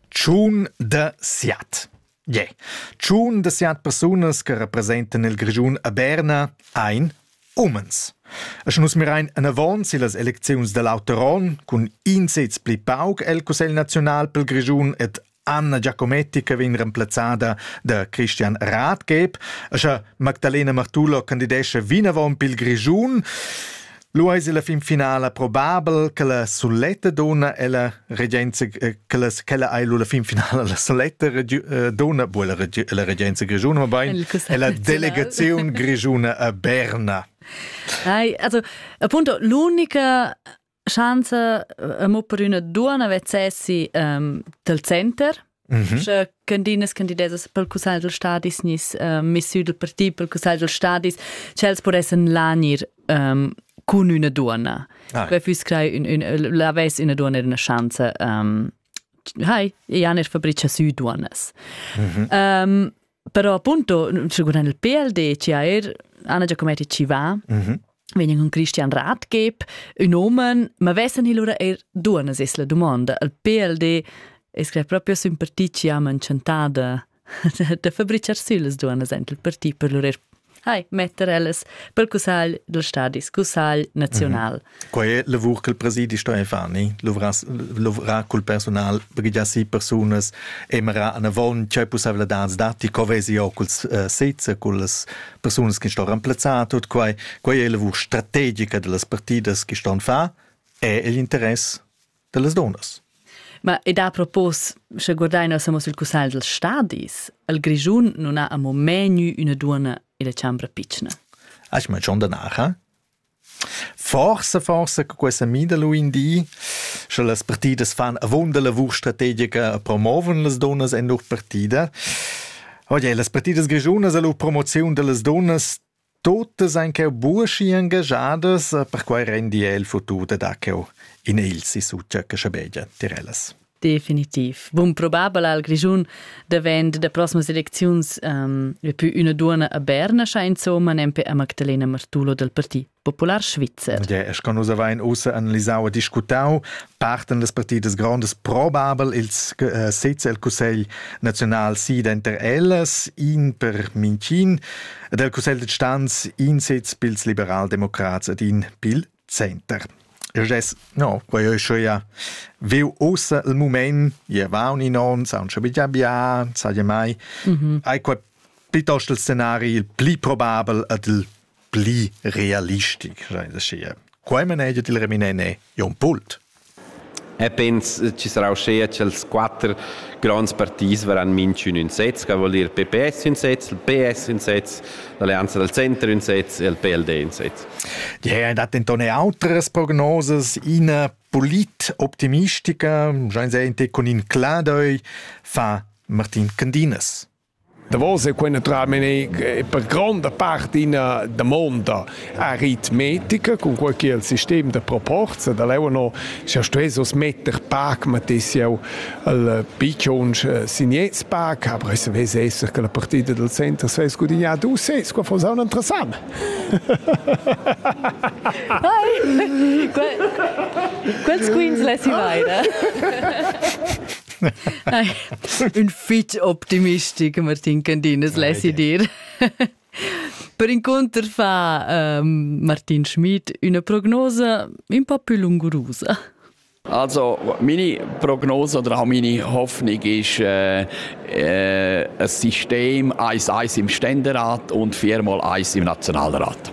Tschun da siat. Ie. Tschun da siat persunas che representan il Grischun a Berna ein umens. E sche nus mirein anavon sillas elecziuns da l'auter onn cun in sez pli pauc el Cussegl naziunal pel Grischun ed Anna Giacometti che vegn remplazzada da Christian Rathgeb, scha Magdalena Martulo candidescha vinavon pil Grischun. Lu eis la fin finala probabel che la suletta donna ella regenza eh, che la quella ei lu la fin finala la suletta eh, donna bu la regenza grischuna ma bein è la delegazione grischuna a Berna. Ai, also appunto l'unica Schanza eh, mo per üna duonna vezzessi um, del center. Mm -hmm. Sche candinas candidesas pel cussagl del stadis nis uh, missüdel per ti pel cussagl del stadis, ch'els podessen lanir um, cun üna duonna. Ah. Que füss crei un, un, la ves üna duonna in una schanza. Um, hai, Jan er fabrica sü duonnas. Mm -hmm. um, Però appunto, seguendo il PLD, ci ha er Anna Giacometti ci va, mm -hmm. vegnen con Christian Ratgeb, un omen, ma vessen il ora er duana sesla domanda. Il PLD è scritto proprio sün partì ci ha mancentada da fabricar süles duana sent il partì per lur er Hai, metter ellas per cussagl del stadi cussagl naziunal. Mm -hmm. Quai è lavur che il presidi sto fani, luvra col personal, brigia si personas, emera an avon, c'è possibilità dati, co vesi io col uh, sezza, col personas che sto remplazzato, quai, quai è lavur strategica delle partidas che sto fa, è l'interesse dallas donas. Ma ed ha propos, sche guardaina samo sul cussagl dels stadis, al Grischun non ha amo menü üna duonna illa chambra pitschna. Ach, ma schon danach, Forse, forse che questa mida lui in di, sche las partidas fan avunda la vur strategica promoven las donas en lur partida. Oje, las partidas grigiunas e la promozione delle donne Totas ein cheu buca engagiadas, perquei rendi el futur da dar cheu in egl sissu tschecca schabegia tier ellas. Definitiv. Bun probabel al Grischun davent da proximas elecziuns um, è più una duona a Berna scha insomma nempe a Magdalena Martulo del Parti Popular Svizzer. Ja, es con usa vain ussa analisau e discutau parten das partidas grandes probabel ils äh, sez el Cussegl naziunal si denter ellas in per Mincin del Cussegl de Stanz in sez pils liberaldemocrats ed in pil center. Jess, no, quei ei schon ja veu ossa il moment, je va un in on, sa un shabia bia, sa je mai. Mhm. Ai quei piuttosto il scenario il pli probabel ad il pli realistic, schein aschia. Quei manegia il Reminene Jon Pult. E pens ci sarà uschea ch'els quatter gronds partits verran minchün ün sez, che vuol dir PPS ün sez, il PS ün sez, l'Alleanza del Center ün sez e il PLD ün sez. Die haben denton auteres Prognoses ina polit-optimistica, schein sehen te con in Cladoi fa Martin Candinas. Davos ei quei naturalmein per gronda part ina damonda aritmetica, cunquei ch'il sistem da proporza da leu ennå scha stuess uss metter pac, mettess jeu il picciunsch Signets pac, aber ei savess esser che la partida dal center svess gudignar du ses, qua fuss aunc interessant. Quels quins lessi veida. Un fitg optimistic, Martin Candinas, lessi dir. Per inconter fa um, Martin Schmid una prognosa un po più lungurusa. Also, meine Prognose oder auch meine Hoffnung ist, äh, äh, ein System, eins, eins im Ständerat und viermal eins im Nationalrat.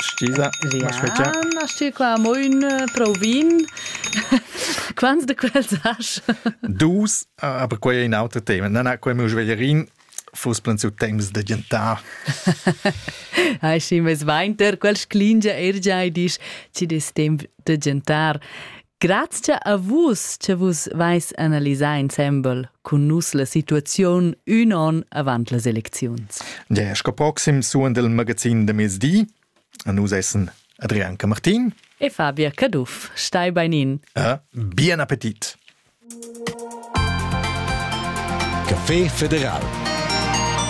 Stisa Riana stir qua mo ün prau vin. Quants de quels has? Dus, aber quei è in auter tema. Na, na, quei meu sveglierin fuss plans u temps da gentar. Hai si mes vainter, quel sclingia er giai disch, ci des temp de gentar. Grazia a vus che vus vais analisar insembel cun nus la situaziun ün on avant las elecziuns. Der sco proxim suon del magazin de mezdi. A nus essen Adrian Camartin e Fabia Caduff. Stai beinin. E bien appetit. Café Federal